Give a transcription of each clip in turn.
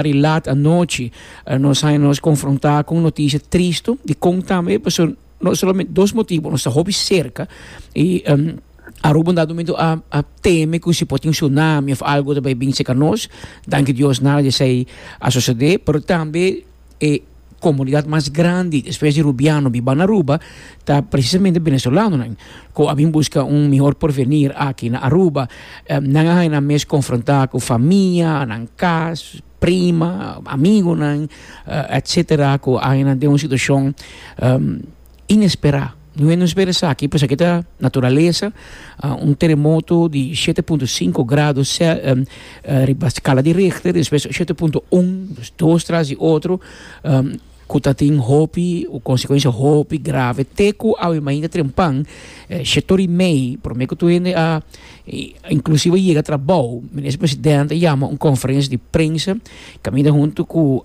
Di lat anochi nos haña nos konfrontá ku un noticia tristu di kon tambe pasobra no solamente dos motibu nos ta hopi serka i Aruba un dado momento a teme ku si por tin tsunami òf algu ta bai binse ka nos danki Dios nada di esei a sosodé pero tambe e comunidad mas grandi despues di Rubiano biba na Aruba ta precisamente Venezolanonan cu a bin busca un mihor porvenir aki na Aruba. Nan a haña nan mes confronta cu famia, nan cas, prima, amigonan, etcetera cu a haña nan den un situacion inespera. No e nos bira esaki pues aki ta naturalesa, un teremoto di shete punto sinku grado riba skala di Richter, despues shete punto un, dus dos tras di otro, ku ta tin hopi konsekuensia hopi grave, te ku awe mainta trempan shete ora i mei prome ku tur hende a inklusive yega trabou, minister presidente a yama un konferensia di prensa kaminda huntu ku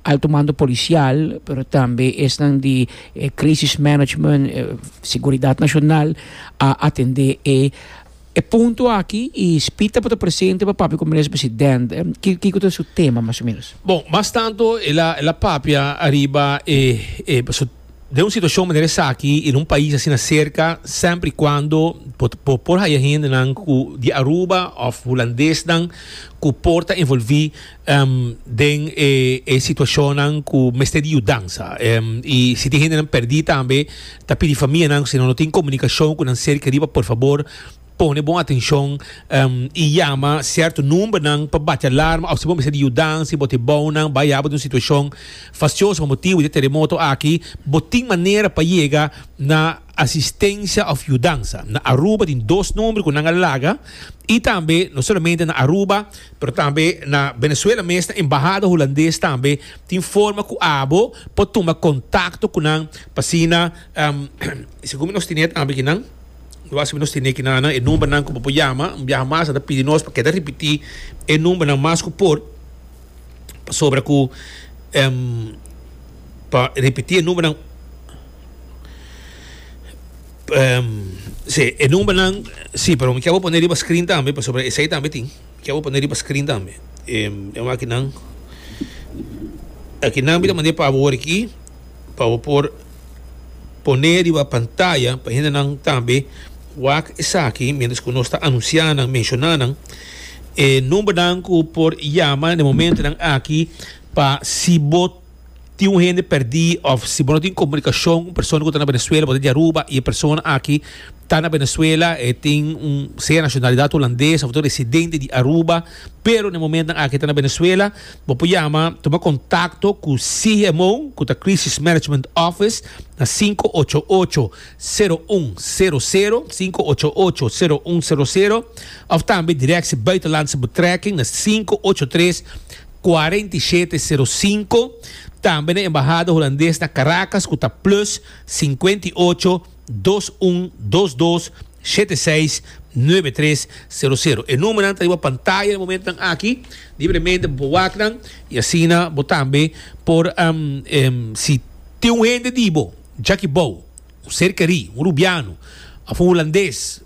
Alto mando policial pero tambe esnan di e crisis management, seguridad nacional a atende e e punto aki y Spit a por ta presente pa papia cu Minister President. Kico ta su tema mas o menos? Bon, mas tanto el a el a papia ariba e e pasobra den un situacion manera esaki y den un pais asina cerca semper y cuando bo bo por haya hendenan cu di Aruba of Hulandes nan cu por ta envolvi den e situacionnan cu mester di yudansa y si tin gentenan perdi tambe ta pidi famianan cu si no tin comunicacion cu nan cerca riba por favor pone bon atencion y yama cierto numbernan pa bati alarma o si bo mester di yudansa y bo ta ebounan bay abo den un situacion faccioso pa motibo di e terremoto aki bo tin manera pa yega na asistencia of yudansa na Aruba tin dos nomber cu nan a laga y tambe no solamente na Aruba pero tambe na Venezuela mes na embahada Hulandes tambe tin forma cu abo por tuma contacto cu nan pa asina segun nos tene tambe aki nan lo hace nos tene aki nan nan e number nan cu bo por yama un biaha mas a ta pidi nos pa keda ripiti e number nan mas cu por pasobra cu pa ripiti e number nan. Um, sí, e numbernan, sí, pero mi kier bo pone riba screen tambe, pa sobre esei tambe tin. Mi kier bo pone riba screen tambe. Um, e aki nan. Aki nan bita mande pa bo aquí, pa bo por pone riba pantalla, pa hende nan tambe wak esaki, mientras ku nos ta anuncia nan, menciona nan. E numbernan ku por yama na e momentonan aki, pa si bo tin un hende perdí of si bo no tin comunicacion cu un persona cu ta na Venezuela bo ta di Aruba y e persona aki ta na Venezuela e tin un sea nacionalidad Hulandes of ta un residente di Aruba pero na e momentonan aki e ta na Venezuela bo por yama tuma contacto cu CMO cu ta Crisis Management Office na sinku ocho ocho sero un sero sero sinku ocho ocho sero un sero sero of tambe directie buitenlandse betrekking na sinku ocho tres Cuarenta i shete sero sinku, tambe na Embahada Hulandes na Caracas cu ta plus sinkuenta i ocho dos un dos dos shete seis nuebe tres sero sero. E numernan ta riba pantaya na e momentonan aki, libremente bo por wakanan y asina bo tambe por si tin un hende di bo djaki bao, un ser keri, un rubiano of un Hulandes,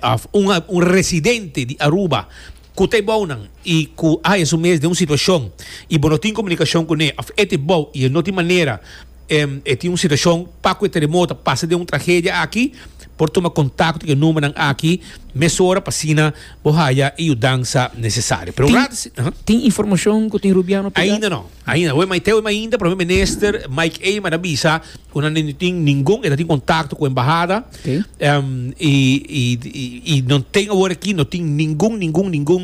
Af, un un residente di Aruba ku ta e bou nan i ku a haya su mes den un situashon i bo no tin komunikashon kuné of e ta e bou i e no tin manera em e tin un situashon pa ku e teremoto a pasa den un tragedia aki por tuma kontakto ku e numbernan aki mesora pa asina bo haya e yudansa nesesario pero un rato si tin informashon ku tin Rubiano pigá? Ainda no. Ainda awe mai te awe mai ainda Prome Minister Mike Eman a bisa ku nan no tin ningun e ta tin kontakto ku embahada okay. um, i, i, i, i non ten awor aki no tin ningun ningun ningun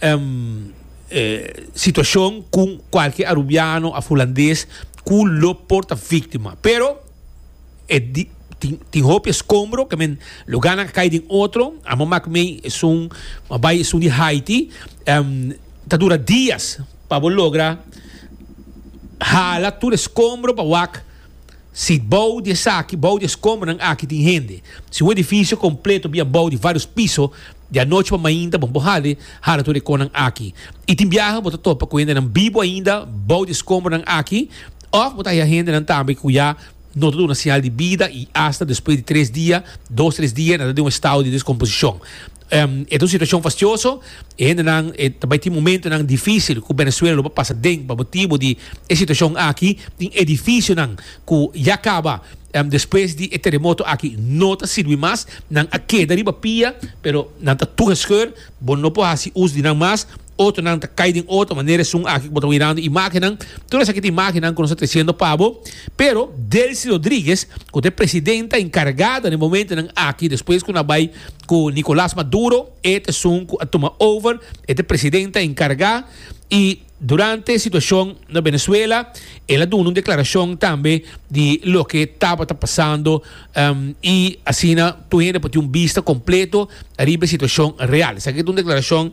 um, eh, situacion ku kualke arubiano a fulandes ku lo porta víctima pero e di, tin, tin hopi escombro que men lo gana cae din otro amo maak mei es un mabai es un di Haiti um, ta dura días pa bo logra hala tur e skombro pa wak si bou di esaki, bou di e skombronan aki tin hende. Si un edifisio kompleto bia bou di vários piso, di anochi pa mainta bon por hali hala tur e konan aki. I tin biaha bo ta topa ku hendenan bibu ainda bou di e skombronan aki, òf bo ta haña hendenan tambe ku ya no ta duna siñal di bida i asta despues di tres dia, dos tres dia nan ta den un estado di deskomposishon. Um, e ta un situacion fastioso, e hendenan e ta bay tin momentonan dificil cu Venezuela lo ba pasa den pa motibo di e situacion aki, tin edificionan cu ya caba um, despues di e terremoto aki no ta sirbi mas, nan a keda riba pia pero nan ta tur gescheur, bo no por haci us di nan mas, Otonan ta kai den otro manera esun aki ku bo ta mirando imagennan. Tur esaki ta imagennan ku nos ta tresiendo pa bo. Pero Delcy Rodriguez, ku ta e presidenta enkargada den momentonan aki, despues ku nan a bai ku Nicolas Maduro, e ta esun ku a tuma over, e ta e presidenta enkargá. I durante e situashon na Venezuela el a duna un deklarashon tambe di loke tabata pasando, i asina tur hende por tin un bista kompleto ariba e situashon real. Esaki ta un deklarashon.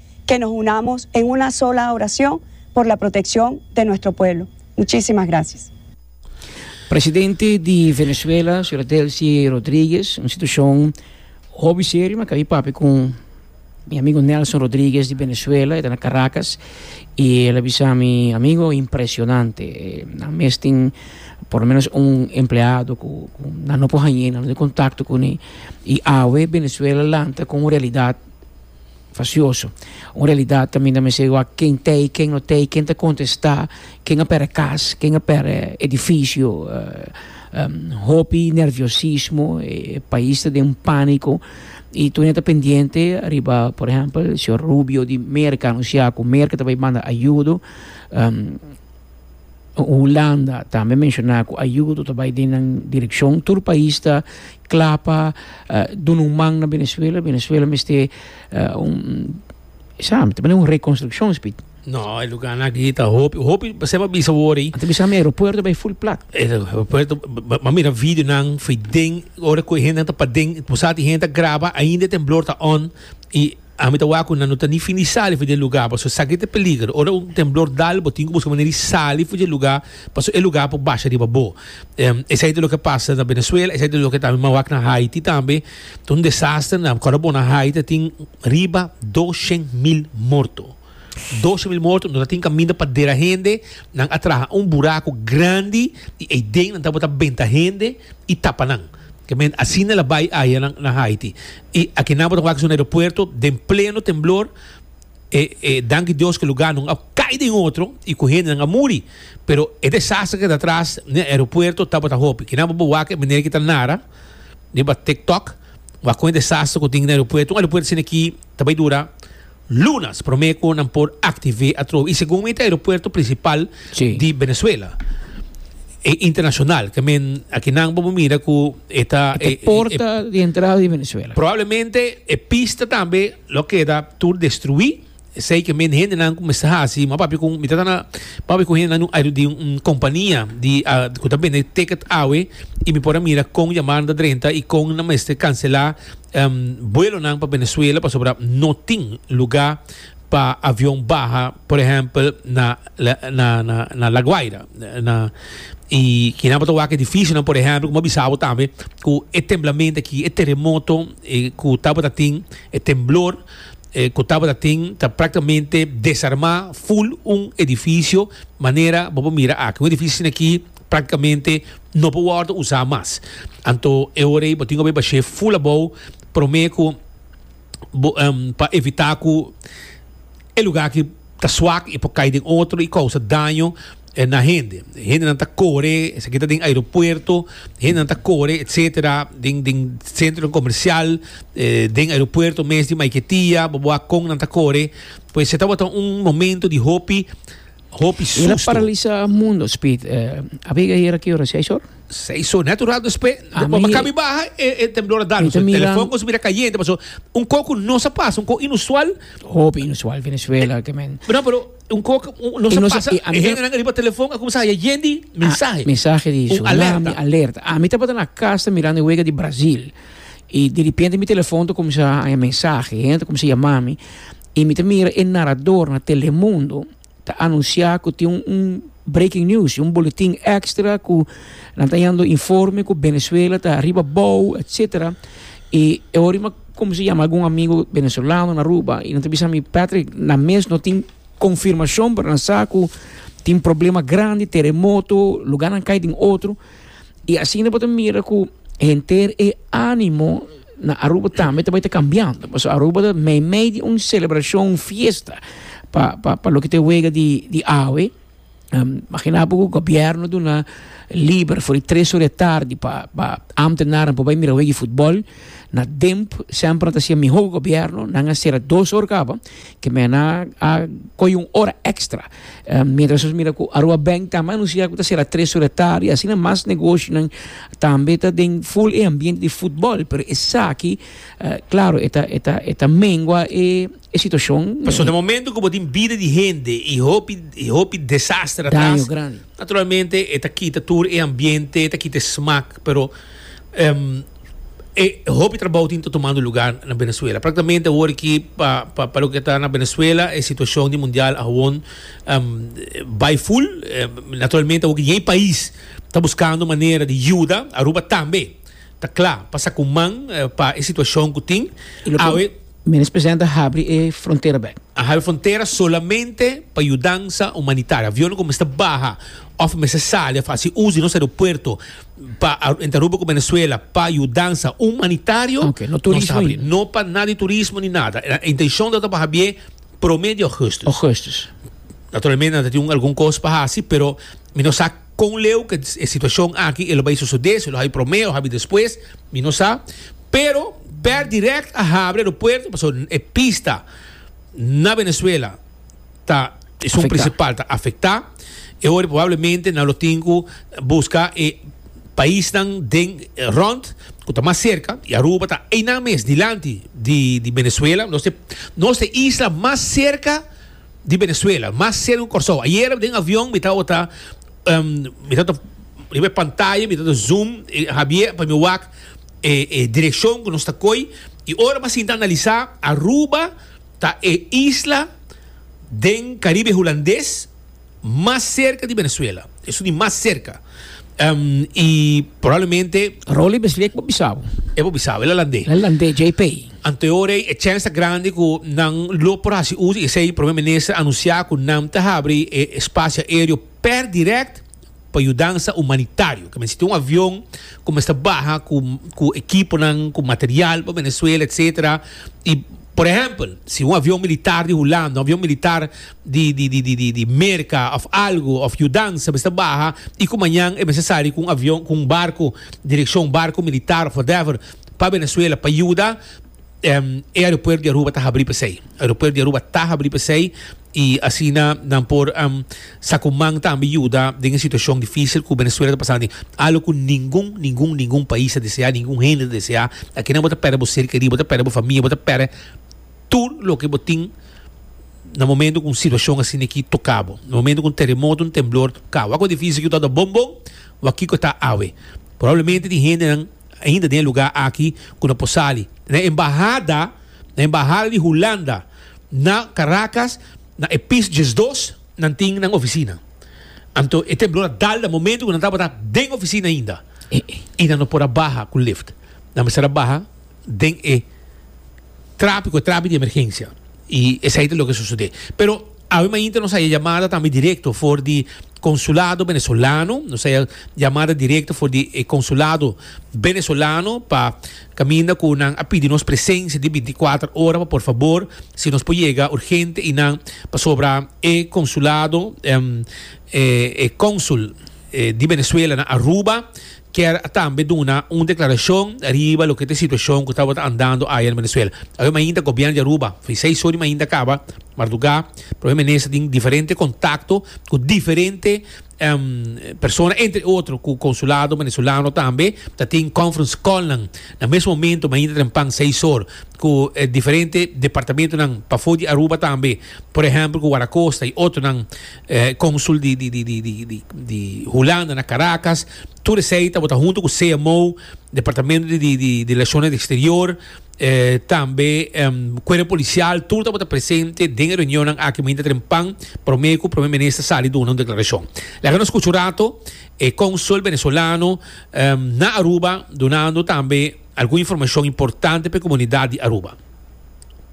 ke nos unamos en una sola oracion por la proteccion de nuestro pueblo. Muchisimas gracias. Presidente di Venezuela, Sra. Delcy Rodriguez, un situacion hopi serio, mi a caba e papia cu mi amigo Nelson Rodriguez di Venezuela, e ta na Caracas, y el a bisa mi, Amigo, impresionante, nan mes tin por lo menos un empleado cu nan no por hañ'e, nan no tin contacto cu ne, y awe Venezuela lanta con un realidad. Fasioso. Un realidat ta mina mester wak ken ta ei, ken no ta ei, ken ta kontestá, ken a pèrdè kas, ken a pèrdè edifisio, hopi nerviosismo, e pais ta den un pániko i tur nan ta pendiente riba, por ehèmpel, señor Rubio di Merka anunsá ku Merka ta bai manda ayudo. Hulanda tambe menshona ku ayudo ta bai den nan direkshon. Tur pais ta kla pa duna un man na Venezuela. Venezuela mester un, esaki mi ta manda un rekonstrukshon spik. No, e luganan aki ta hopi, hopi ser pa bisa wor ei. Ta bisa mi aeropuerto ta bai ful plat. E aeropuerto, bo mira videonan for den, ora ku e hendenan ta paden, bo sa te hende ta graba, ainda e temblor ta on, i Ami ta wak cu nan no ta ni fin di sali fuedje e lugar, pasobra sa aki ta e peligro. Ora un temblor dal, bo tin cu busca manera di sali fuedje e lugar, pasobra e lugar por basha riba bo. Esai ta loke pasa na Venezuela, esai ta loke tambe mawak na Haiti tambe. Ta un desastre na, acuer bo na Haiti a tin riba doshen mil morto. Doshe mil morto no ta tin kaminda pa dera hende, nan a traha un buraku grandi i ei den nan tabata benta hende i tapa nan. Kemen asina el a bai aya nan na Haiti. I aki nan bo ta wak su na eropuerto den pleno temblor, e e danki Dios ku luga no a kai den otro i ku hendenan a muri, pero e desastre ke ta atras den eropuerto tabata hopi. Aki nan bo bo wak e meneer ku ta nara riba TikTok, wak kon e desastre ku tin den eropuerto. Un eropuerto asina aki ta bai dura Lunas promé ku nan por aktivé atrobe. I segun mi ta aeropuerto prinsipal di Venezuela. E internashonal ke men akinan bo bo mira ku e ta e. E porta di entrada di Venezuela. Probablemente e pista tambe lo a keda tur destruí. Esei ke men hendenan ku mester hasi. M'a papia ku mi ta na m'a papia ku hendenan di un kompania di ku ta bende ticket awe i mi por a mira kon yamannan ta drenta i kon nan mester kanselá. buelonan pa Venezuela pasobra no tin lugá pa avion baha, por ehèmpel, na na na La Guaira. Na i kinan bo ta wak e edifisio, por ehèmpel, kuma bisa bo tambe ku e temblamento aki, e teremoto ku tabata tin, e temblor ku tabata tin ta práktikamente desarmá ful un edifisio manera bo por mira aki. Un edifisio aki Práktikamente no por wòrdu usá mas. Anto e ora ei bo tin ku bai bash'é ful abou promé ku bo pa evitá ku e lugá aki ta swak i por kai den otro i kousa daño na hende. Hendenan ta kore, esaki ta den aeropuerto, hendenan ta kore etsetera den den sentronan komersial, den aeropuerto mes di Maiquetía, bo bo a kon nan ta kore. Pues e tabata un momento di hopi. Hopi susto. Ela paralisa mundo, Speed. Uh, a vega era que hora, seis hora? Seis hora, net rato después. A mi... Maka mi baha, e, e temblor a dano. So, mira... Telefon ko mira cayente, paso un coco no se pasa, un coco inusual. Hopi inusual Venezuela, que men. Pero, pero un coco no se pasa. E gente nan arriba telefon, a comenzar a yendi mensaje. Mensaje di so, alerta. alerta. A mi tabata na casa mirando e wega di Brazil. E de repente mi telefon to comenzar a mensaje, gente comenzar a llamar mi. I mi ta mira e narador na Telemundo ta anunsiá ku tin un un breaking news, un boletin ekstra ku nan ta yando informe ku Venezuela ta ariba bou etsetera. I e ora mi a kumsa yama algun amigu venezolano na Aruba i nan ta bisa mi, Patrick, nan mes no tin konfirmashon pero nan sa ku tin problema grandi, teremoto, lugarnan kai den otro. I asina bo ta mira ku henter e ánimo. Na Aruba tambe ta bai ta cambiando, pasobra Aruba ta meimei di un celebracion, un fiesta pa, pa, pa loke ta e wega di, di awe. Um, magina bo cu gobierno duna liber for di tres ora e tardi pa, pa ambtenaren por bai mira wega di futbol. Na Demp semper nan ta siña miho cu gobierno, nan a cera dos ora caba Ke mena a koyo un ora extra. Mientras nos mira ku Aruba Bank ta anuncia ku ta sera tres ora di tardi, asina mas negoshonan tambe ta den full e ambiente di futbol, pero esaki claro e ta e ta e ta mengua e situacion. Pasobra e momento ku bo tin bida di hende i hopi i hopi desaster atras, naturalmente e ta kita tur e ambiente, e ta kita e smak, pero E hopi trabou tin ta tumando lugá na Benezuela. Praktamente awor aki pa pa pa loke ta na Benezuela e situashon di mundial awon bai ful. Naturalmente awor dje pais ta buskando manera di yuda. Aruba tambe ta kla pa saka un man pa e situashon ku tin awe. Minis Presidente a habri e frontera bèk. A habri frontera solamente pa yudansa humanitaria. Avionnan ku mester baha òf mester sali a hasi uso di nos aeropuerto. pa Aruba ku Venezuela pa yudansa humanitario nos ta habri, no pa nada di turismo ni nada, e intenshon ta pa habié promé di Augustus, naturalmente nan ta tin un algun kos pa hasi pero mi no sa kon leu ke e situashon aki e lo bai sosodé, si lo habi promé o habi despues mi no sa, pero pèr dirèkt a habri aeropuerto pasobra e pista na Venezuela. ta esun principal ta afecta e ora probablemente nan lo tin cu busca e paisnan den rond cu ta mas cerca y Aruba ta einan mes dilanti di di Venezuela nos te nos te isla mas cerca di Venezuela mas cerca cu Corsou ayer den avion mi tabata um mi tabata riba e pantaya mi tabata zoom e Javier pa mi wak e e direccion cu nos ta coy y ora mi a sinta analiza Aruba. Ta e isla den Caribe Hulandes mas cerca di Venezuela. Esun di mas cerca. Y probablemente. Rolly Beslia e por bisabo. E por bisabo, el a lande. El a lande dje p'ey. Anto orey e chance ta grandi cu nan lo por haci uso y esey Primer Minister anuncia cu nan ta habri e espacio aereo per direct pa yudansa umanitario, ke mester tin un avion ku mester baha ku ku ekiponan, ku material pa Venezuela etc. I por ehèmpel si un avion militar di Hulanda, un avion militar di di di di di di Merka òf algu òf yudansa mester baha i ku mañan e mester sali ku un avion ku un barku direkshon barku militar òf whatever pa Venezuela pa yuda. E aeropuert di Aruba ta habrí p'esei. Aeropuert di Aruba ta habrí p'esei i asina nan por sa ku man tambe yuda den e situashon difísil ku Venezuela ta pasando atin. Algo ku ningun, ningun, ningun pais ta deseá, ningun hende ta deseá. Akinan bo ta pèrdè bo ser kerí, bo ta pèrdè bo famia, bo ta pèrdè tur loke bo tin na momentu ku un situashon asina aki toká bo, na momentu ku un teremoto, un temblor toká bo. Wak ku e difísil ki bo ta wak bon bon, wak kiko ta awe. Probablemente tin hendenan. ainda den e lugá aki ku no por sali. Na e embahada, na e embahada di Hulanda na Karakas, na e pis diesdos nan tin nan ofisina. Anto e temblor a dal ta momentu ku nan tabata den ofisina ainda i nan no por a baha ku lift. Nan mester a baha den e trapi ku e trapi di emergensia. I esei ta loke sosodé. Pero. Awe mainta nos haya yamada tambe directo for di consulado Venezolano, nos haya yamada directo for di e consulado Venezolano pa caminda cu nan a pidi nos presencia di binti cuater ora pa por fabor si nos por yega urgente y nan pasobra e consulado e consul di Venezuela na Aruba kier a tambe duna un deklarashon riba loke ta e situashon ku tabata andando aya na Venezuela. Awe mainta gobièrnu di Aruba, fin seis or di mainta kaba, mardugá, Prome Minister tin diferente kontakto ku diferente persona entre otro ku konsulado venezolano tambe ta tin conference call nan na mes momento mainta trempan seis or ku e diferente departamentonan pafó di Aruba tambe por ehèmpel ku Warakosta i otronan. Consul di di di di di di Hulanda na Caracas tur esey ta bo ta hunto cu CMO departamento di di di relaciones exterior tambe cuerpo policial tur ta bo ta presente den e reunionnan aki mainta trempan prome cu prome minister sali duna un declaracion laga nos scucha un rato e consul venezolano na Aruba dunando tambe algun informacion importante pa e comunidad di Aruba.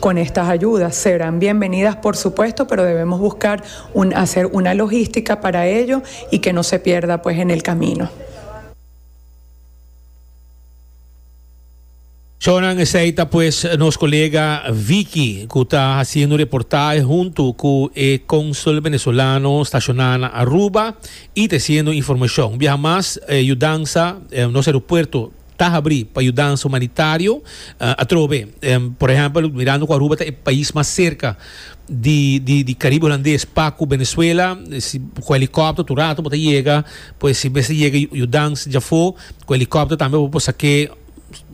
Con estas ayudas serán bienvenidas por supuesto, pero debemos buscar un hacer una logística para ello y que no se pierda pues en el camino. Chonan esey ta pues nos colega Vicky cu ta haciendo reportahe hunto cu e Consul Venezolano staciona na Aruba y treciendo informacion. Un biaha mas, e yudansa, nos aeropuerto ta habrí pa yudansa humanitario atrobe. Por ehèmpel, mirando ku Aruba ta e pais mas serka di di Karibe Hulandes pa ku Venezuela, si ku helikòpter tur rato bo ta yega, pues si mester yega yudans dja afó, ku helikòpter tambe bo por sak'é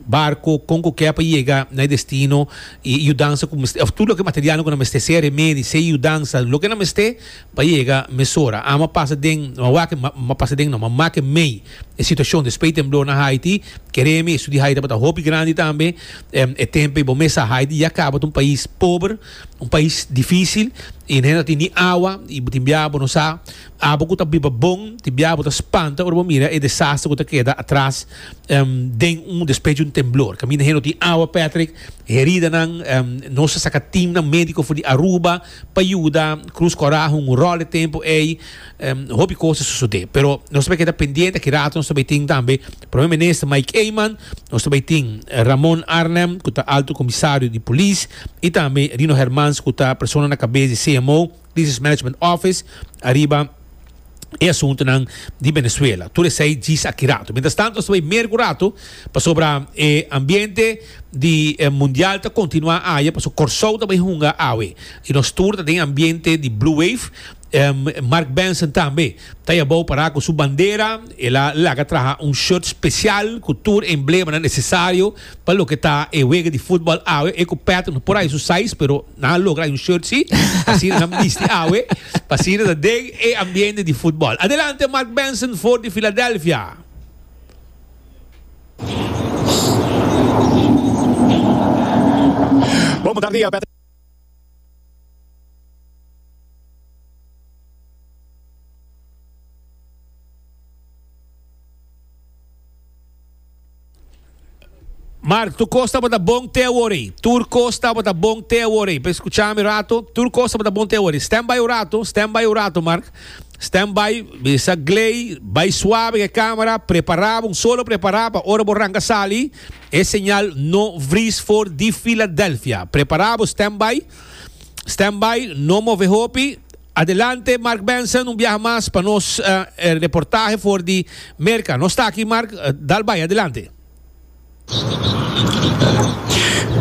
barko, kon ku ke pa yega na e destino. I yudansa ku mester òf tur loke materialnan ku nan mester, sea remedi, sea yudansa, loke nan mester, Pa yega mesora. Ama pasa den, ma wak ma pasa den no, ma make mei. E situashon di spei temblor na Haiti, kere mi e su di Haiti tabata hopi grandi tambe. E tempe bo mes sa Haiti ya kaba ta un pais pober, un pais difisil, i nan e no tin ni awa, i bo tin bia bo no sa. Abo ku ta biba bon, tin bia bo ta spanta ora bo mira e desaster ku ta keda atras den un, despues di un temblor. Kaminda hen no tin awa, Patrick. Heridanan, nos a saka teamnan médiko for di Aruba. Pa yuda Cruz Coraje un rol e tempu ei hopi cos a sosode. Pero nos ta bay keda pendiente aki rato nos ta bay tin tambe Prome Minister Mike Eman, nos ta bay tin Ramon Arnhem cu ta Alto Comisario di Polis y tambe Rino Hermans cu ta persona na cabes di CMO, Crisis Management Office, ariba. e asuntunan di Venezuela. Tur esei djis aki rato. Mientras tanto, asta bay mercu rato, pasobra e ambiente di e mundial ta continua aya, paso Corsou ta bay hunga awe. Y nos tur ta den ambiente di Blue Wave, em, Mark Benson tambe ta yabao para cu su bandera, el a laga traha un shirt special cu tur emblemanan necesario, Pa loke ta e wega di futbal awe, e ku Pat no por haya su size, pero nan a logra haya un shirt si, asina nan bisti awe, pa asina ta den e ambiente di futbal. Adelante Mark Benson for di Philadelphia. Bon butardia, Patrick. Mark, tur cos tabata bon te awori. Tur cos tabata bon te awori. Pe escuchami un rato. Tur cos tabata bon te awori. Stand by un rato. Stand by un rato, Mark. Stand by. Bisa Gley. Bay suave ke camera. Prepara bon. Solo prepara pa ora bo ranga sali. E señal no vries for di Philadelphia. Prepara bo. Stand by. Stand by. No move hopi. Adelante Mark Benson un biaha mas pa nos e reportahe for di Merca. Nos ta aki Mark, dal bay adelante.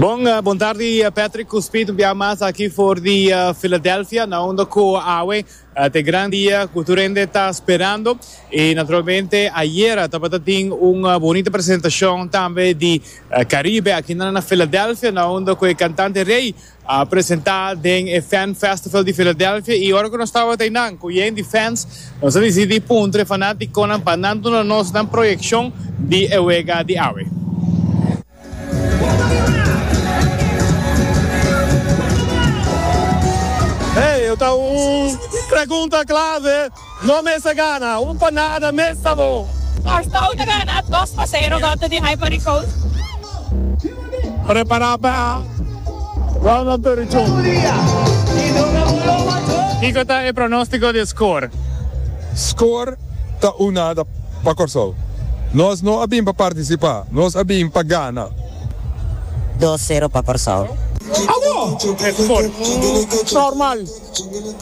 Bon, bon tardi Patrick cu Speed un biaha mas aki for di Philadelphia na unda cu awe ta e gran dia cu tur hende ta sperando y naturalmente ayera tabata tin un bonita presentacion tambe di Caribe aki na Philadelphia na unda cu e cantante rey A presentá den e Fan Festival di Filadelfia i ora ku nos tabata einan ku yen di fans, nos a disidí puntra e fanátikonan pa nan duna nos nan proyekshon di e wega di awe. Hey, e ta un pregunta klave. No mester gana un pa nada mes ta bo. Kòrsou ta gana dos pa sero kontra di Ivory Coast. Prepará pa Ronald Perrichon. Kiko ta e pronóstiko di skor? Skor ta un nada pa Kòrsou. Nos no a bin pa partisipá, nos a bin pa gana. Dos sero pa Kòrsou. Abo e skor normal.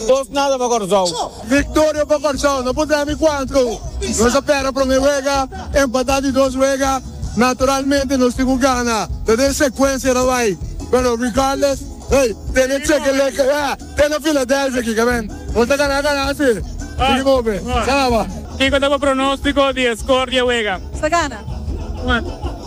Postnada pa Kòrsou. Victoria pa Kòrsou, no por dame cuanto. Nos a pèrdè promé wega, empatá di dos wega, naturalmente nos tin cu gana, ta den secuencia ta bai, pero regardless, hey, tene cheque leke, ya, tene Philadelphia aki ka bèn, nos ta gana gana así, tiki mobe, sa caba. Kiko ta bo pronóstico di e score di e wega? Nos ta gana. Cuanto?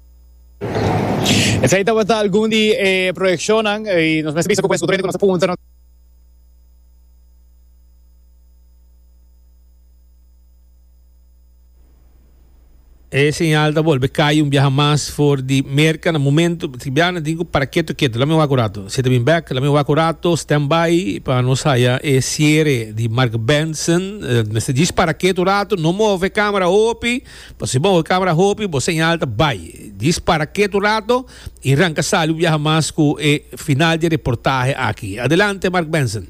Esei tabata algun di e proyekshonnan i nos mester bisa ku pues utrera ku nos ta puntra nos E señal ta bolbe kai un biaha mas for di Merka na momento si biaha na tin ku para keto keto lami wak un rato si ta bin bek lami wak un rato stand by pa nos haya e siere di Marc Benson mester djis para keto un rato no move camera hopi. Pa si bo kabra hopi bo señal ta bai. Dispara ket un rato y ranka sali un biaha mas cu e final di e reportahe aki. Adelante Mark Benson.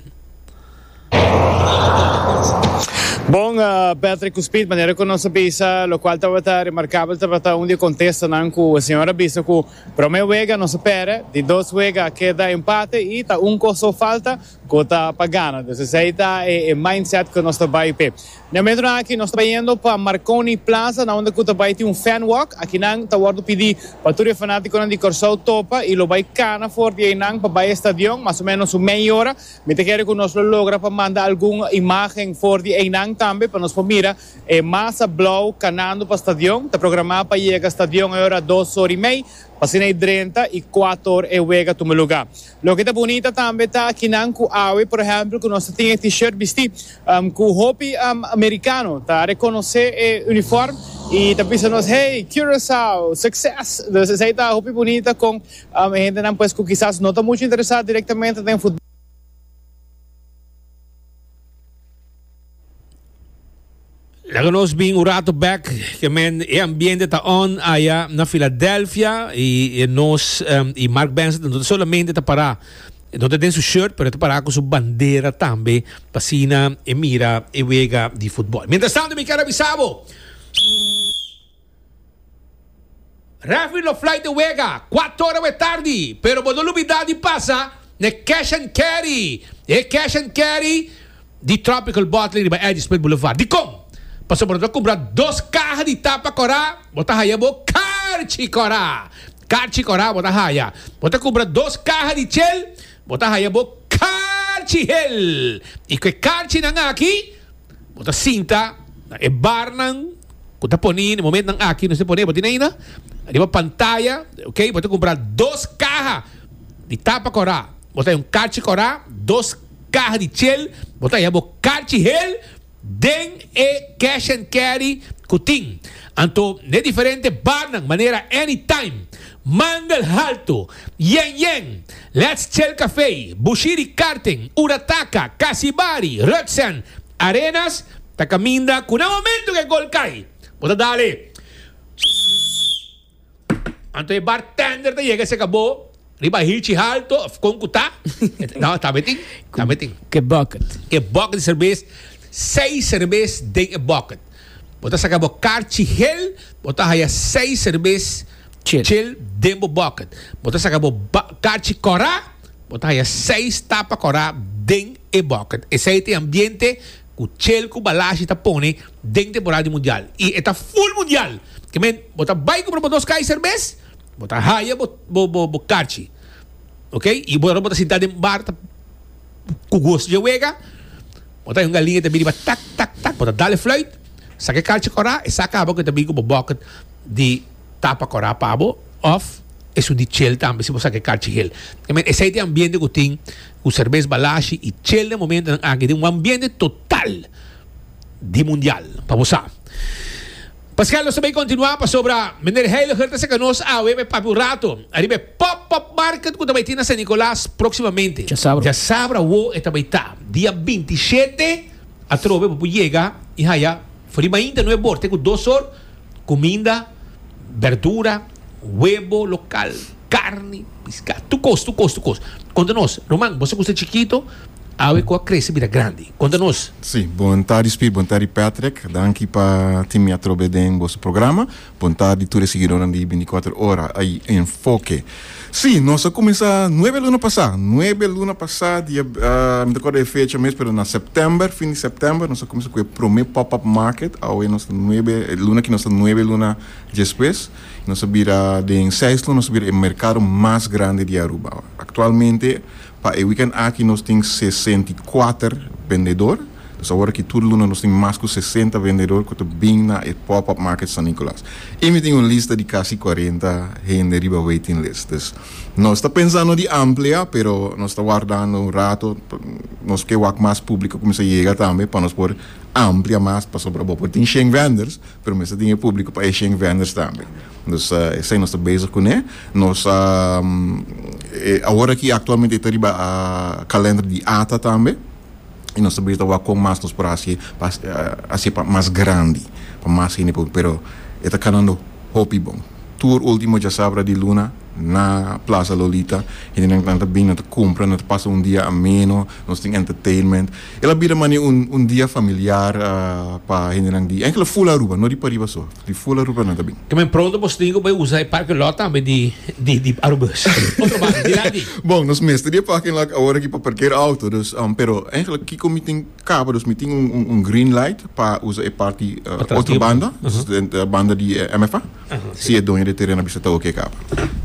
Bon, Patrick cu Speed, manera cu nos a bisa, locual tabata remarcabel, tabata un di e contestonan cu e señor a bisa cu prome wega nos a perde, di dos wega a keda empate y ta un coso falta, Cu ta pa gana. Pues esey ta e mindset cu nos ta bay p'e. Miamentonan aki nos ta bay yendo pa Marconi Plaza na unda cu ta bay tin un fan walk. Aki nan ta wordo pidi pa tur e fanaticonan di Corsou topa y lo bay cana for di eynan pa bay e stadion. Mas o menos un mei ora. Mi ta kere cu nos lo logra pa manda algun imagen for di eynan tambe pa nos por mira e masa blauw canando pa stadion. Ta programa pa yega stadion e ora dos ora y mei. P'asina e drenta y cuator e wega tuma lugar. Loke ta bunita tambe ta kinan ku awe por ehèmpel ku nos ta tin e T-shirt bistí ku hopi amerikano ta rekonosé e unifòrm i ta bisa nos hey Curaçao succes! Entonces esei ta hopi bunita kon e hendenan pues ku kisas no ta muchu interesá direktamente den futbòl. Laga nos bin un rato bek ke men e ambiente ta on aya na Philadelphia i e nos um, i Mark Benson no ta solamente ta para no ta den su shirt pero ta para ku su bandera tambe pasina e mira e wega di futbol. Mientras tanto mi kere bisabo Referee lo fly di wega kuato ora we tardi pero bo no lubida di pasa n'e cash and carry e cash and carry di tropical bottling riba Eddy Smith Boulevard dikon pasobra bo ta kumpra dos kaha di tapa kora bo ta haya bo karchi kora karchi kora bo ta haya bo ta kumpra dos kaha di chel bo ta haya bo karchi hel i ku e karchi nan aki Bo ta sinta na e barnan ku ta poni na e momentnan aki. Nos ta pone bo tin aina riba pantaya, oke. Bo ta kumpra dos kaha di tapa kòrá. Bo ta haya un karchi kòrá, dos kaha di chel. Bo ta haya bo karchi hel den e cash and carry ku tin. Anto na e diferente barnan manera anytime. Mandel Haltu, Yen Yen, Let's Chel Café, Bushiri Karting, Urataka, Kasibari, Rutsen, Arenas ta caminda cu na momento cu e gol cay bo ta dale Sssss Anto e bartender ta yega cerca bo riba a hichi halto of con cu ta No, tambe tin, tambe tin. Cu e bucket. E bucket di cervez, seis cervez den e bucket. Bo ta saka bo karchi hel, bo ta haya seis serbes chil den bo bòket. Bo ta saka bo karchi kòrá, bo ta haya seis tapa kòrá den e bòket. Esei ta e ambiente ku chil ku balashi ta pone den temporada di mundial. I e ta ful mundial. Ke men, bo ta bai kumpra bo dos kai serbes, bo ta haya bo karchi, ok? I bo ta sinta den bar ta. ku goso dje wega, bo ta hoi un galinha ta bin riba tak tak tak, bo ta dal e fluit, saka e kalchi kòrá, e sa kaba ku e ta bin ku bo bòkit di tapa kòrá pa bo òf esun di chel tambe si bo saka e kalchi hel. E men esei te ambiente ku tin ku serbes balashi i chel den momentonan aki tin un ambiente total di mundial, pa bo sa. Pascal nos ta bay continua pasobra Meneer Heiliger ta saca nos awe bay papia un rato ariba e pop pop market cu ta bay tin na San Nicolas proximamente. Djasabra wo e ta bay ta. Dia binti i shete atrobe bo por yega i haya for di mainta nu e borte cu dos sort cuminda, berdura. webo lokal, karni, piská, tur kos, tur kos, tur kos. Konta nos, ruman, boso ku sta chikito, awe ku a krese bira grandi. Konta nos. Sí, bon tardi Spy, bon tardi Patrick. Danki pa tin mi atrobe den boso programa. Bon tardi tur e siguidónan di binticuater ora y Enfoke. Sí, nos a kuminsá nuebe luna pasá, nuebe luna pasá di ab, mi ta kòrda e fecha mes pero na sèptèmber, fin di sèptèmber nos a kuminsá ku e promé pòp-up market, awe nos ta nuebe, luna aki nos ta nuebe luna Despues nos a bira den Seislon nos a bira e merkado mas grandi di Aruba. Aktualmente pa e wikènt aki nos tin sesenta i kuater bendedor, dus awor aki tur luna nos tin mas ku sesenta bendedor ku ta bin na e pòp-òp market San Nikolas. I mi tin un lista di kasi kuarenta hende riba waiting list. Dus nos ta pensando di amplia pero nos ta wardando un rato nos ke wak mas públiko kuminsá yega tambe pa nos por amplia mas pasobra bo por tin shen vendors. Pero mester tin e publico pa Asian vendors tambe. Dus esai nos ta bezig cune. Nos a awor aki actualmente e ta riba calender di ata tambe y nos ta bira ta wak con mas nos por haci pa haci pa mas grandi pa mas hende por pero e ta canando hopi bon. Tur ultimo diasabra di luna na Plaza Lolita hendenan nan ta bini nan ta cumpra nan ta pasa un dia ameno nos tin entertainment. El a bira mane un un dia familiar pa hendenan di enkele full Aruba, no di pariba so, di full Aruba nan ta bin. Kemen pronto bo stingo bo e usa e parking lot tambe di di di Arubers. Otro banda di la di. Bon, nos mester di e parking lot awor aki pa parker auto, dus pero enkele kiko mi tin kaba, dus mi tin un un un green light pa usa e parti Atras di otro Aruba. banda, dus Ahaa. den banda di MFA, Ahaa, si. si e doño di e teren a bisa ta oke kaba.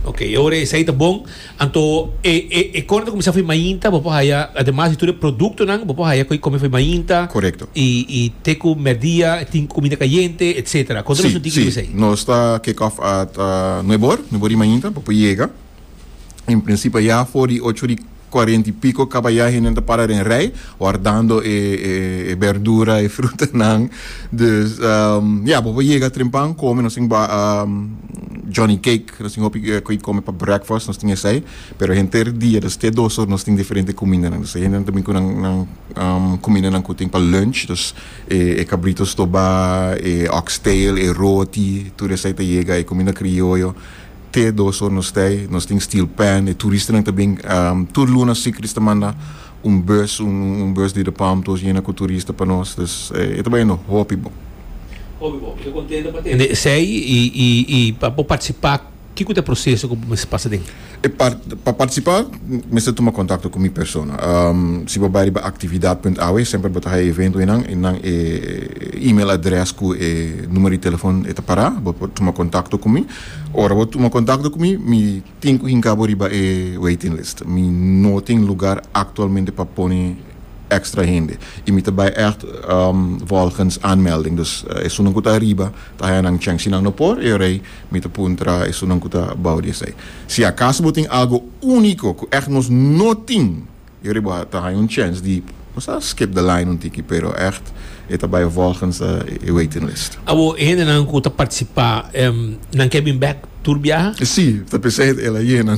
Oke, y ora esei ta bon, Anto e e e kòrda ta kuminsá for mainta bo por haya ademas di tur e produktonan bo por haya ku e kòmi for mainta Korekto. i i te ku mèrdia tin kuminda kayente etsetera kòrda nos Si, no tin si. kilis esei? Nos ta kick off at nuebe or, nuebe or di mainta bo por yega. En prinsipio a ya for di ocho di cuarenta y pico kaba ya hendenan ta para den rij wardando e e e bèrdura e frutanan. Dus ya bo por yega trempa kome nos tin ba Johnny Cake. Nos tin hopi cu e come pa breakfast, nos tin esai, pero henter dia dus te dos or nos tin diferente cumindanan. Dus te hendenan tambe cu nan cumindanan cu tin pa lunch, dus e cabrito stoba, e oxtail, e roti, tur esai ta yega, e cuminda crioyo, te dos or nos t'ai, nos tin steel pan, e turistanan ta bin, tur luna Secrets ta manda. un bus un bus di Depalm todos yena cu turista pa nos dus e ta bay no hopi bon. Hopi bon, mi ta contento pa tende esey y pa bo participa kico ta e proceso cu bo mester pasa den? E pa participa mester tuma contacto cu mi persona si bo bay riba actividad.awe semper bo ta haya evento enan y nan e email adres cu e numero di telefon e ta para bo por tuma contacto cu mi ora bo tuma contacto cu mi mi Tin cu hinca bo riba e waiting list. Mi no tin lugar actualmente pa pone extra hende y mi ta bay echt volgens aanmelding. Dus esunnan cu ta ariba ta haya nan cheng. Si nan no por e rij, mi ta puntra esunnan cu ta bou di esey. Si acaso bo tin algo unico cu echt nos no tin. Yori bo a ta haña un chèns di nos a skip de line un tiki pero ègt e ta bai volgens e waiting list. Awor e hendenan ku ta partisipá nan ke bin bèk tur biaha? Sí, ta p'esei e la yena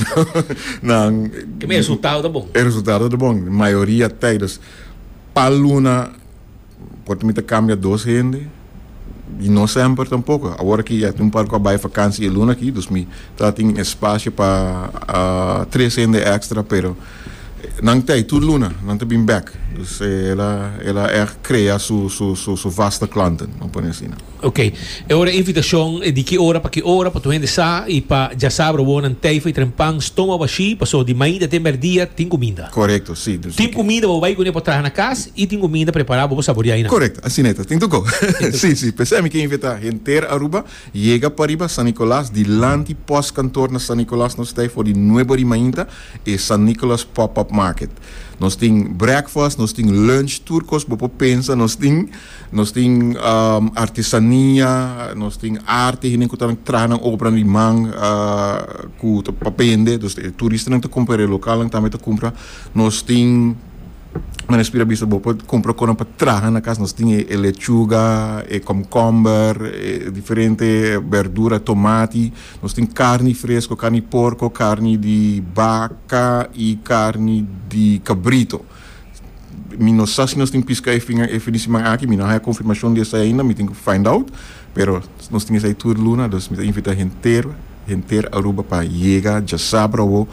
nan. Kib'e e resultado ta bon? E resultado ta bon, mayoria tijdes pa luna Por tin mi ta cambia dos hende y no semper tampoco. Awor aki ya tin un par cu a bay vakantie e luna aki dus mi ta tin espacio pa tres hende extra pero nan tey tur luna nan ta bin bek. Dus el a el a echt crea su su su su vaste klanten, lo pone asina. Ok, e ora e invitacion e di ki ora pa ki ora pato hende sa y pa dja sa brobo nan teyfa y tren pan stoma bashi paso di mainta te merdia tin cuminda. Correcto, si. Dus tin cuminda bo bay cune pa traha na cas y tin cuminda prepara bo bo saboria y nan. Correcto, asina eta. Tin to go. Si, si. P'esey mi ke invita henter Aruba yega pariba San Nicolas dilanti pos kantor na San Nicolas nos tey for di nuebe di mainta e San Nicolas pop up market. Nos tin breakfast, nos tin lunch tur cos bo por pensa nos tin. Nos tin artesania, nos tin arte, hende ku ta traha nan obranan di man ku ta pa bende, dus e turistanan ta kumpra, e lokalnan tambe ta kumpra. Nos tin, mane Speed a bisa bo, por kumpra konan pa traha na kas, nos tin e lechuga, e kòmkòmber, e diferente bèrdura, tomati, nos tin karni fresko, karni porko, karni di baka i karni di kabrito. Mi no sa si nos tin piska e fin e fin di siman aki, mi no haya confirmacion di esai ainda, mi tin cu find out, pero nos tin esai tur luna, dus mi ta invita henter, henter Aruba pa yega djasabra awo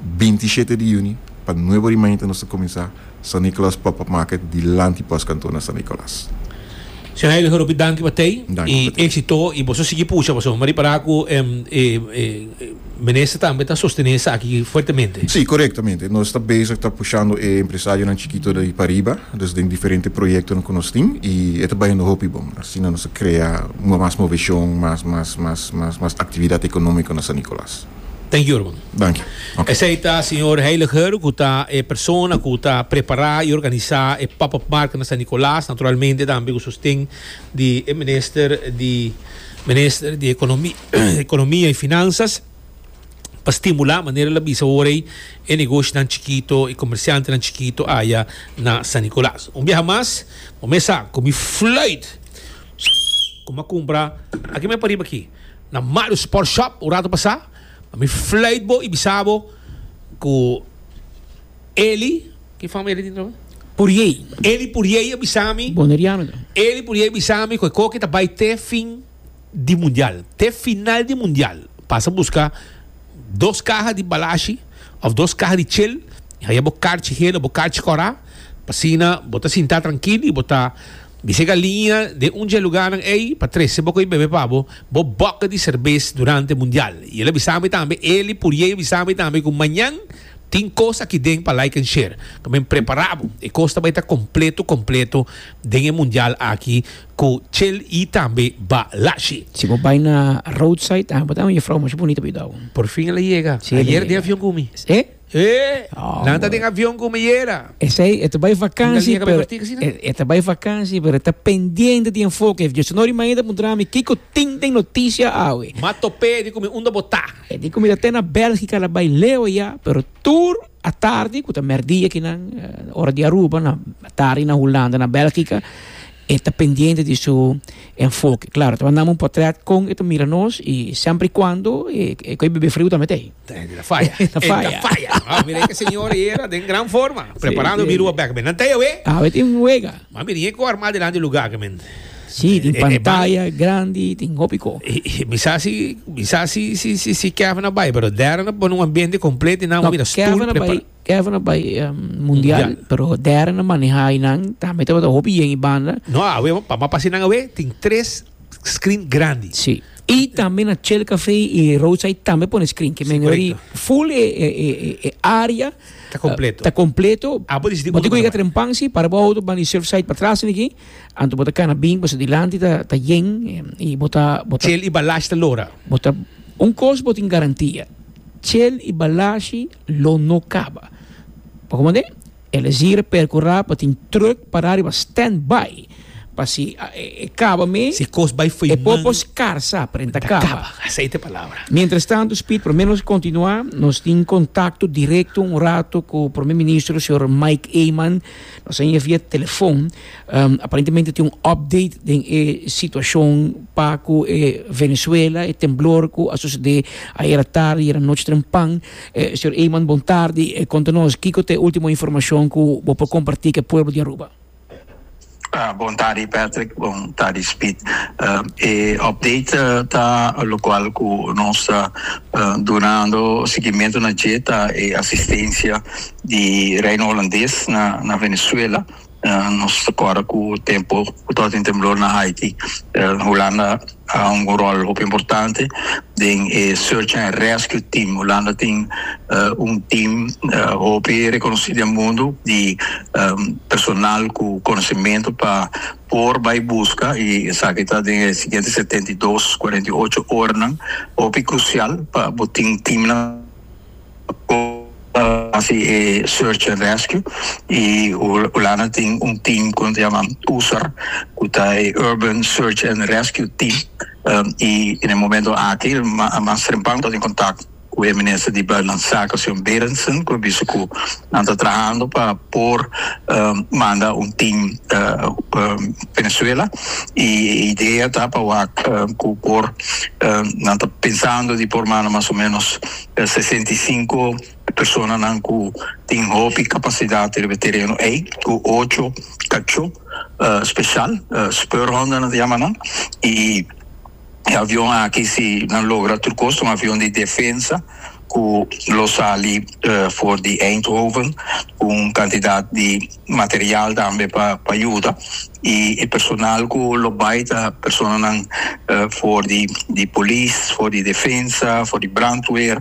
binti shete di juni pa nuevo rimainta nos ta cuminsa San Nicolas Pop-up Market dilanti Post Kantoor na San Nicolas. Señor Heilig Ropi, danki pa tei. Danki I pa tei. éxito. I boso sigui pusha, boso mari para ku em, e, e, e, minister tambe ta sostené esaki fuertemente. Sí, correctamente. Nos está bezig ta pushando e empresarionan chikito de pariba, dus den diferente proyectonan ku nos tin, i e ta bayando hopi bon. Asina nos a krea mas moveshon, mas, mas, mas, mas, mas aktividat ekonómiko na San Nicolas. den jurman. Danki. Ok. Esei ta señor Heiliger cu ta e persona cu ta prepara y organisa e pop-up market na San Nicolas, naturalmente tambe cu sosten di e minister di Minister di Economia y Finanzas pa stimula, manera el a bisa ora ei, e negoshinan chikito, e comerciantenan chikito aya na San Nicolas. Un biaha mas bo mesa cu mi fluit cu mi a cumpra, aki me pariba aki. Na Mario Sport Shop un rato pasá, mi fluit bo i bisa bo ku Eli, ki fam Eli tin troe? Puriei. Eli Puriei a bisa mi. Boneriano ta. Eli Puriei a bisa mi ku e koki ta bai te fin di mundial, te final di mundial. Pasa buska dos kaha di balashi òf dos kaha di chel i haya bo karchi hel òf bo karchi kòrá pa asina bo ta sintá trankil i bo ta. Mi sega liña den un dje lugánan ei pa trese bo ku e bebe pa bo bo bòkè di serbes durante mundial i el a bisa mi tambe el i Puriei a bisa mi tambe ku mañan tin kos aki den pa like and share ku men prepará bo e kos ta bai ta kompleto kompleto den e mundial aki ku chel i tambe balashi. Si bo bai na roadside tambe bo ta haya un jefrou masha bunita pa yuda bo. Por fin el a yega. Ayer den avion ku mi. Nan ta den avion ku mi yera. Esei e ta bai vakansi pero e ta bai vakansi pero e ta pendiente di enfoke. If Diosenor di Mañana ta puntra mi kiko tin den notisia awe. M'a top'é di ku mi unda bo ta. E di ku mi ta te na Belgika la bai leu ya pero tur atardi ku ta merdia ki nan ora di Aruba na atardi na Hulanda na Belgika e ta pendiente di su enfoke. Klaro e ta mandami un potret kon e ta mira nos i semper i kuando e koe bebe friu tambe t'ei. Ten ta faya. Ten ta faya. Ten ta faya. Ah, mira e señor era den gran forma. Preparando si, biruwa bek. Nan taya we? Ah, we tin wega. Ma mira e ko arma delante e lugar ke men. Si, tin pantaya e, e, grandi, tin hopi ko. E, e, mi sa si, mi sa si, si, si, si Kevin a bay, pero Darren a pon un ambiente completo nan no, mira stoel Kevin a bay, Kevin a bay um, mundial, mundial, pero Darren a maneha y nan tambe te hopi yen y banda. No, a we, pa ma pasi nan a we, tin tres screen grandi. Sí. Y tambe na Shell Café y Roadside tambe pone screen. Que men ori full e, e, e, e área. Ta completo. Uh, ta completo. Ah, pues dice. Botico llega trempan, sí, para boa auto, van y surfside para atrás, aquí. Anto bota cana bing, pues adelante ta, ta yen, y bota, bota. Shell y Balash ta lora. Bota, un cos botin garantía. Shell y Balashi lo no caba. Pa como de? El a zira percura pa tin truck para riba stand by pa si e caba me si cos bay foy e popo scar sa pero e ta caba mientras tanto speed promer nos continua nos tin contacto directo un rato cu promer ministro señor Mike Eman nos a envia via telefon aparentemente tin un update den e situacion pa cu e Venezuela e temblor cu a sucede ayer atarde ayer anochi trempan E Sr. Eman bon tardi, e konta nos kiko ta e ultimo informashon ku bo por kompartí ku e pueblo di Aruba. Bon tardi Patrick, bon tardi Speed. E update ta lokual ku nos ta dunando sigimentu na dje ta e asistensia di Reino Holandes na Venezuela. Nos ta kòrda ku tempu ku tabata den temblor na Haiti. Hulanda a hunga un ròl hopi importante den e search and rescue team. Hulanda tin un team hopi rekonosí den mundu di personal ku konosementu pa por bai buska i esaki ta den e siguiente setenta i dos, cuarenta y ocho, oranan hopi krusial pa bo tin teamnan. hasi e search and rescue y hulanda tin un team cu nan ta yama usar cu ta e urban search and rescue team y en e momento aki Mastrimpang ta tin contact cu e minister di Buitenlandse Zaken señor Berendsen cu a bisa cu Nan ta trahando pa por manda un team Venezuela y e idea ta pa wak cu por nan ta pensando di por manda mas o menos sesenta y cinco personanan cu tin hopi capacidad riba e tereno ey cu ocho cacho special speurhonden nan ta yama nan y E avion aki si nan logra tur cos ta un avion di defensa cu lo sali for di Eindhoven cu un cantidad di material tambe pa pa yuda y e personal cu lo bay ta personanan for di di polis for di defensa for di brandweer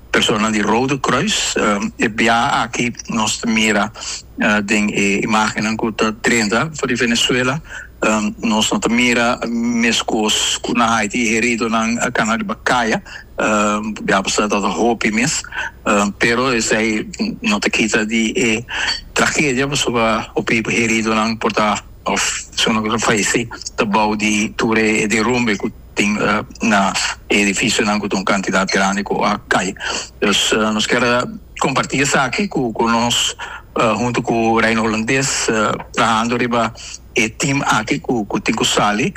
Personanan di Rode Kruis. E bia aki nos ta mira den e imagennan ku ta drenta for di Venezuela. Nos no ta mira meskos ku na Haiti, heridonan a kana riba kaya. Bia pasá ta tabata hopi mes, pero esei no ta kita di e tragedia pasobra hopi heridonan por ta òf si unda ku ta falesé ta abou di tur e derumbe ku. tin na e edificionan cu ta un cantidad grandi cu a cay. Dus nos kier comparti esaki cu cu nos hunto cu Reino Holandés trahando riba e team aki cu cu tin cu sali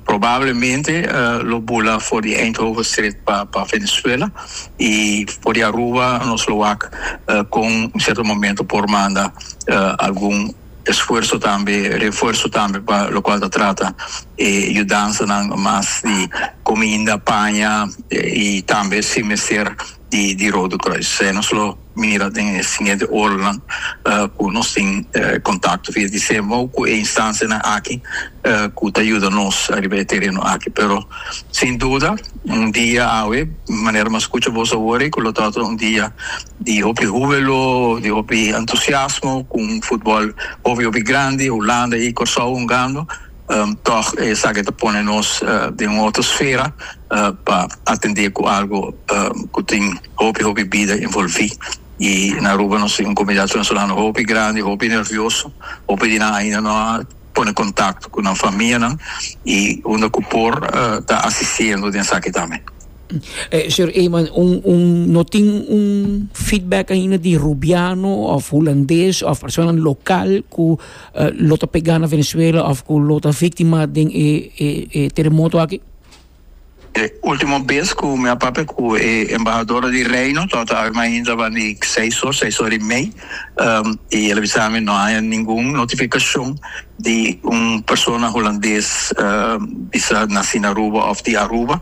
probablemente lo bula for di Eindhovenstreek pa pa Venezuela y for di Aruba nos lo wak con un cierto momento por manda algun esfuerso tambe refuerso tambe pa lokual ta trata e yudansanan mas di kuminda paña i tambe si mester di di Rode Kruis esei nos lo mira den e siguiente oranan ku nos tin kontakto via di semou ku e instansianan aki. cu ta yuda nos ariba e tereno aki. Pero sin duda un dia awe manera mi a scucha bos awor ei cu lo ta un dia di hopi hubelo, di hopi entusiasmo cu un futbol hopi hopi grandi Hulanda y Corsou hungando tog esaki ta pone nos den un otro sfera pa atende cu algo cu tin hopi hopi bida envolvi y na Aruba nos tin un comunidad venezolano hopi grandi hopi nervioso hopi di nan ainda no a pone contacto cu nan famianan y unda cu por ta asiciendo den esaki tambe. Señor Eman, no tin un feedback ainda di Rubiano of Hulandes of personanan local cu lo ta pega na Venezuela of cu lo ta victima den e terremoto aki? E ultimo bes ku mi a papia ku e embahador di Reino torta awe mainta ban di seis or seis or i mei i el a bisa mi no haña ningun notifikashon di un persona hulandes bisa nasi na Aruba òf di Aruba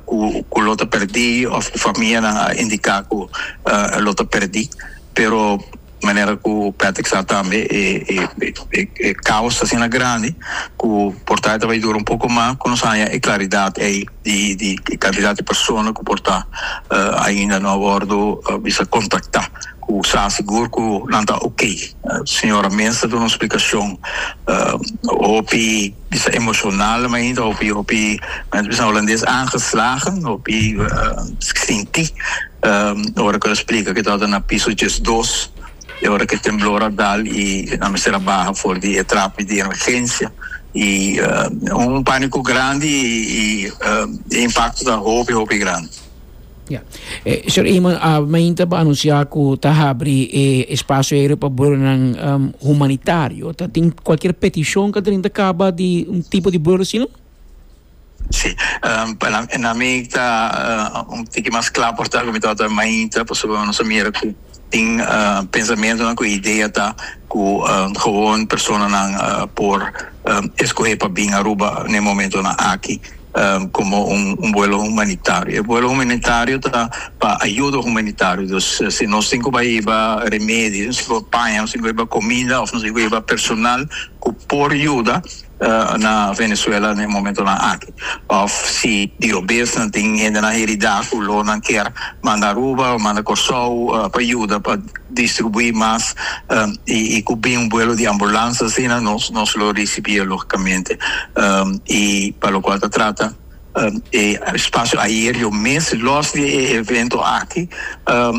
ku lo ta perdí òf ku famianan a indiká ku lo ta perdí pero manera ku Patrick sa tambe e kaos ta asina grandi ku por ta e ta bai dura un poko mas ku nos haña e klaridat ei di di e kantidat di persona ku por ta ainda no a wòrdu bisa kontaktá ku sa sigur ku nan ta oke. Señora Mintz ta duna un splikashon hopi. Bisa emocional mainta hopi hopi mens bisa Holandes aangeslagen hopi sinti ora cu lo splica cu tabata na piso diesdos y ora cu e temblor a dal y nan mester a baha for di e trapi di emergencia y un panico grandi y e impacto ta hopi hopi grandi. Ya. E Sr. Eman, a mainta bo a anunsiá ku ta habri e espasio aereo pa burdonan humanitario. Ta tin kualkier petishon ku ta drinta kaba di un tipo di burdo asina? Sí. Na mi ta un tiki mas kla por ta ku mi tabata mainta, pasobra nos a mira ku Tin pensamentonan ku idea ta ku gewoon personanan por eskohé pa bin Aruba n'e momentonan aki komo un vuelo humanitario. E vuelo humanitario ta pa ayuda humanitario. Dus si nos tin ku bai hiba remedio, nos tin ku bai paña, nos tin ku bai hiba kominda òf nos tin ku bai hiba personal ku por yuda, na Venezuela na e momentonan aki of si diobes nan tin hendenan heridá ku lo nan kier manda Aruba o manda Kòrsou pa yuda pa distribuí mas i ku bin un buelo di ambulansa asina nos lo risibié logikamente i pa lokual ta trata. e spasio aereo mes. Los di e evento aki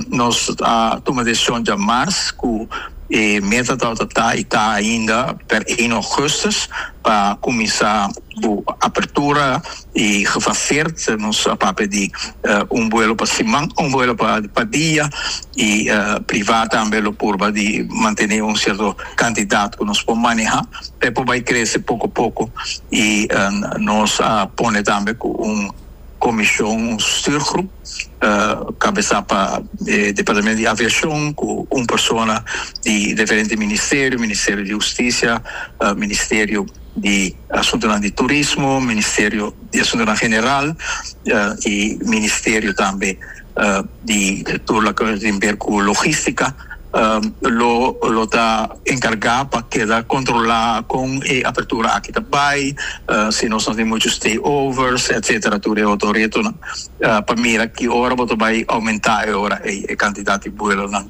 nos a tuma decision dja mas cu e meta tabata ta y ta ainda per eno augustus pa cuminsa cu apertura y gefaseerd nos a papia di un vuelo pa siman un vuelo pa dia y priva tambe lo purba di mantene un cierto cantidad cu nos por maneha. e por bai crece poco poco y nos a pone tambe cu un comision un stuurgroep cabeza pa departamento di aviacion cu un persona di diferente ministerio, ministerio di husticia, ministerio di asuntonan di turismo, ministerio di asuntonan general y ministerio tambe di tur la cu tin ber cu logistica lo lo ta encarga pa keda controla con e apertura aki ta bay si nos no tin mucho stay overs etcetera tur e otro retonan pa mira ki ora bo ta bay aumenta e ora ey e cantidad di buelonan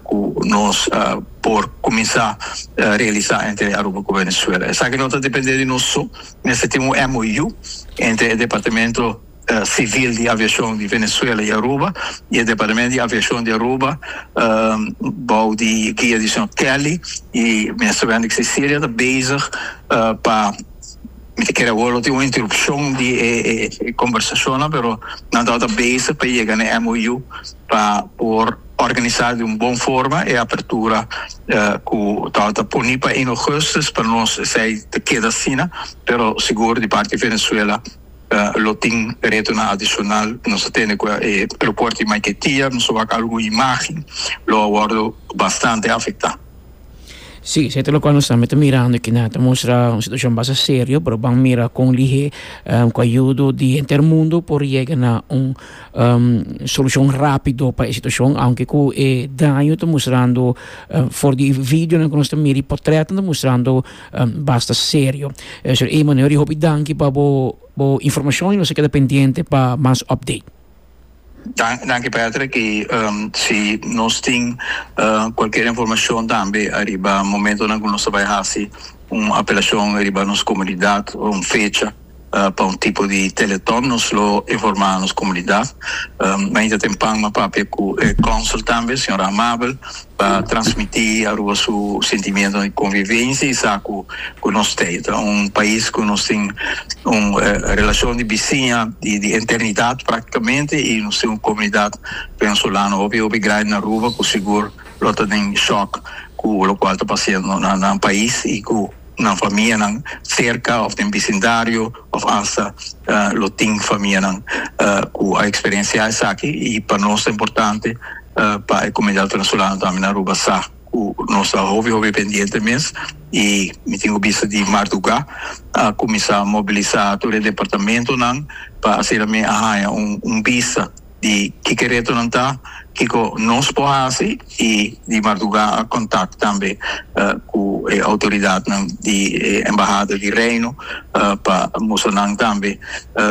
cu nos por cuminsa realisa entre Aruba cu Venezuela esaki no ta depende di nos so mester tin un MOU entre e departamento Sivil di Aviashon di Venezuela i Aruba i e Departamento di Aviashon di Aruba bou di guia di señor Kelly i Minister Wendrick Cecilia ta bezig pa mi ta kere awor lo tin un interupshon di e kombersashonnan pero nan tabata bezig pa yega na e MOU pa por organisá di un bon forma e apertura ku tabata puni pa Augustus pa nos esei ta keda asina pero sigur di parti di Venezuela Lo tin retonan adicional nos a tene cu e aeropuerto di Maiquetía, nos a wak algun imagen, lo a wordo bastante afecta. Sí, se ta lo cual nos tambe ta mirando kina ta mustra un situacion basta serio, pero ban mira con lihe cu ayudo di henter di mundo por yega na un solucion rapido pa e situacion, aunke cu e daño ta mustrando for di videonan cu nos ta mira y portretnan ta mustrando Basta serio. Sr. Emanuel di hopi danki pa bo bo informashon i nos a keda pendiente pa mas update. Dan danki Patrick i si nos tin kualkier informashon tambe ariba momentonan ku nos ta bai hasi un apelashon riba nos komunidat o un fecha. pa un tipo di telethon nos lo informa nos comunidad mainta tempan ma papia cu e consul tambe señor Amabel pa transmiti Aruba su sentimiento di convivencia y sa cu cu nos ta y ta un pais cu nos tin un relacion di bisiña di di eternidad practicamente y nos tin un comunidad venezolano hopi hopi grandi na Aruba cu sigur lo ta den shock cu locual ta pasiendo na nan pais y cu nan famianan serka of den bisindario of hasta lo tin famianan cu a experiencia esaki y pa nos ta importante pa e comunidad venezolano tambe na Aruba sa cu nos ta hopi hopi pendiente mes y mi tin cu bisti di marduga a cuminsa mobilisa tur e departamentonan pa asina mi a haya un bista. di kiko e retonan ta, kiko nos por hasi y di marduga a contact tambe cu e autoridadnan di e Embahada di Reino pa mustra nan tambe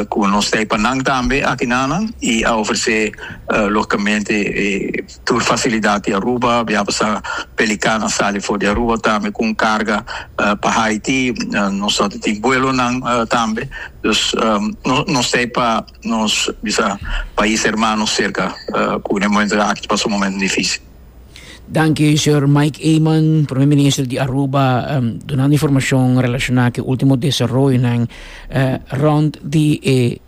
cu nos ta pa nan tambe aki na nan y a ofrece logicamente tur facilidad di Aruba, a biaha pasá Pelican a sali for di Aruba tambe cu un carga pa Haiti, nos ta tin vuelonan tambe, nos ta pa. Nos bisa pais hermano serka cu na e momentonan aki ta pasa un momento dificil. Danki señor Mike Eman, Primer Minister di Aruba, um, dunando informacion relaciona cu ultimo desaroyonan uh, rond di e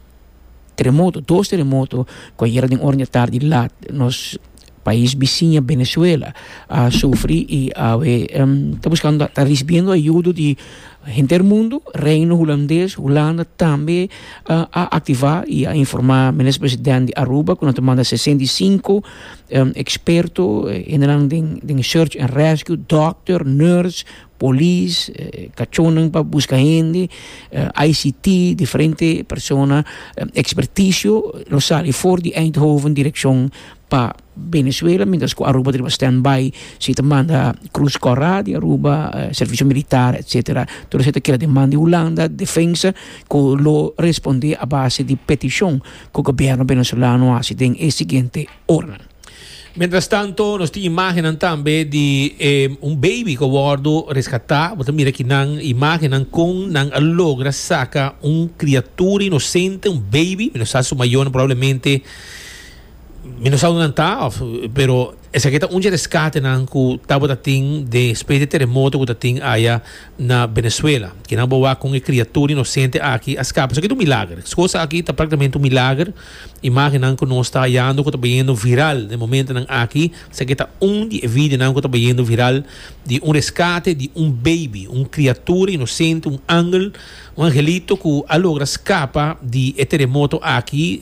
terremoto, dos terremoto, cu ayer den ora di tardi laat nos Pais bisiña Venezuela a sufri i awe ta buskando ta risibiendo ayudo di henter mundo, Reino Hulandes, Hulanda tambe a activa i a informa Minister President di Aruba cu nan ta manda sesenta i sinku experto hendenan den search and rescue, doctor, nurse, polis, cachonnan pa buska hende, ICT, diferente persona, experticio lo sali for di Eindhoven direccion pa Venezuela mientras cu Aruba riba stand by si ta manda cruz cora di Aruba servicio militar etcetera tur esey ta keda demand di Hulanda defensa cu lo responde a base di peticion cu gobierno venezolano a haci den e siguiente oranan. Mientras tanto nos tin imagennan tambe di e un baby cu a wordo rescata bo ta mira aki nan imagennan con nan a logra saca un criatura inocente un baby mi no sa su mayornan probablemente Mi no sa unda nan ta, of, pero esaki ta un dje rescatenan cu tabata tin despues di e teremoto cu ta tin aya na Venezuela. Kinan bo a wak con e criatura inocente aki a scapa? Esaki ta un milager. Sco sa aki ta practicamente un milager. Imagennan cu nos ta hayando cu ta bayendo viral den e momentonan aki, esaki ta un di e videonan cu ta bayendo viral di un rescate di un baby, un criatura inocente, un angel, Un angelito cu a logra scapa di e teremoto aki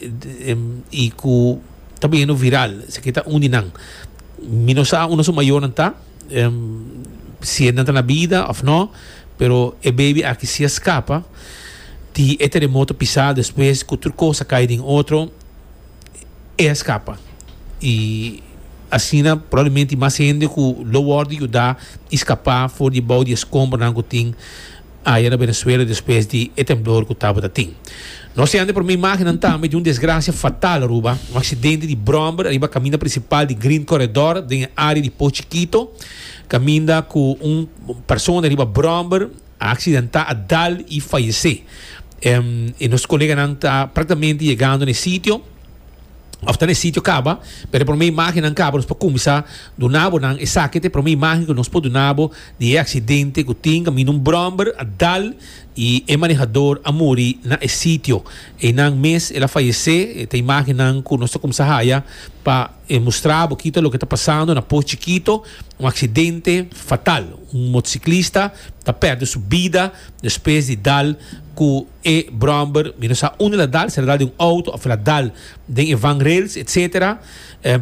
y cu ta beyendo viral, esaki ta un di nan. Mi no sa unda su mayornan ta, si nan ta na bida of no, pero e baby aki si a scapa di e teremoto pisado, despues cu tur cos a cay den otro, e a scapa y asina probablemente mas hende cu lo wordo yuda y scapa for dibao di e scombronan cu tin. aya na Venezuela despues di e temblor cu tabata tin. Nos ta yanda prome imagennan tambe di un desgracia fatal Aruba, un accidente di bromber ariba caminda principal di Green Corredor den e area di Poh Chikito, caminda cu un persona riba bromber a accidenta a dal y fayece. E nos coleganan ta practicamente yegando na e sitio. of ta na e sitio caba, pero e prome imagennan caba, nos por cuminsa duna bo nan esaki ta e prome imagen cu nos por duna bo di e accidente cu tin caminda un bromber a dal y e manehador a muri na e sitio. Eynan mes el a fayece, e ta imagennan cu nos ta cuminsa haya pa mustra bo kita loke ta pasando na Post Chikito, un accidente fatal, un motociclista ta perde su bida despues di dal cu. E bromber mi no sa unda el a dal, si el a dal den un auto of el a dal den e vangrails etc.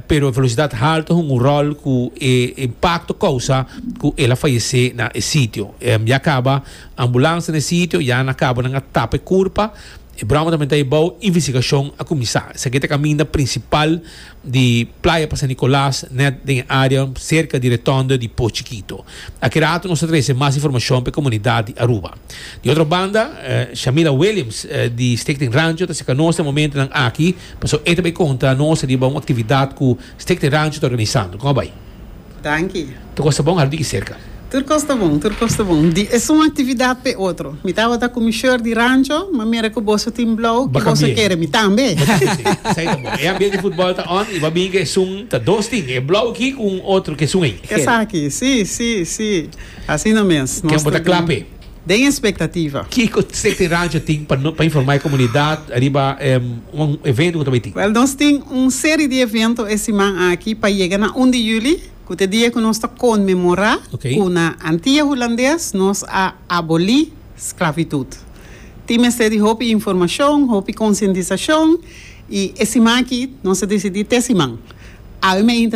Pero e velocidad halto a hunga un rol cu e impacto causa cu el a fayece na e sitio. Ya caba ambulancia na e sitio, ya na cabo nan a tapa e curpa. E bromber tambe ta ebao, investigacion a cuminsa. Esaki ta caminda principal. di Playa pa San Nicolas net den e area serka di Retondo di Po Chikito. Aki rato nos ta trese mas informashon pa e komunidat di Aruba. Di otro banda, Shamila Williams di Stichting Rancho ta serka nos na e momentonan aki, pasobra e ta bai konta nos riba un aktividat ku Stichting Rancho ta organisando. Kon a bai? Danki. Tur cos ta bon al bigi cerca. Tur cos ta bon, tur cos ta bon. Di esun actividad pe otro. Mi tabata cu mi short di rancho, ma mira cu boso tin blauw cu boso kere. Mi tambe. Mi tambe si. Esai ta bon. E ambiente di futbol ta on y bo a bini cu esun ta dos tin. E blauw aki cu un otro cu esun ey. Esaki. Si, si, si. Asina mes. Nos ta. Ken bo ta cla pe. den e spectativa. Kico CT Radio tin pa no pa informa e comunidad riba un evento cu ta bay tin? Wel nos tin un seri di evento e siman aki pa yega na un di juli cu ta e dia cu nos ta conmemora cu na Antia Hulandes nos a aboli sclavitud. Tin mester di hopi informacion, hopi concientisacion y e siman aki nos a decidi te siman. Awe mainta.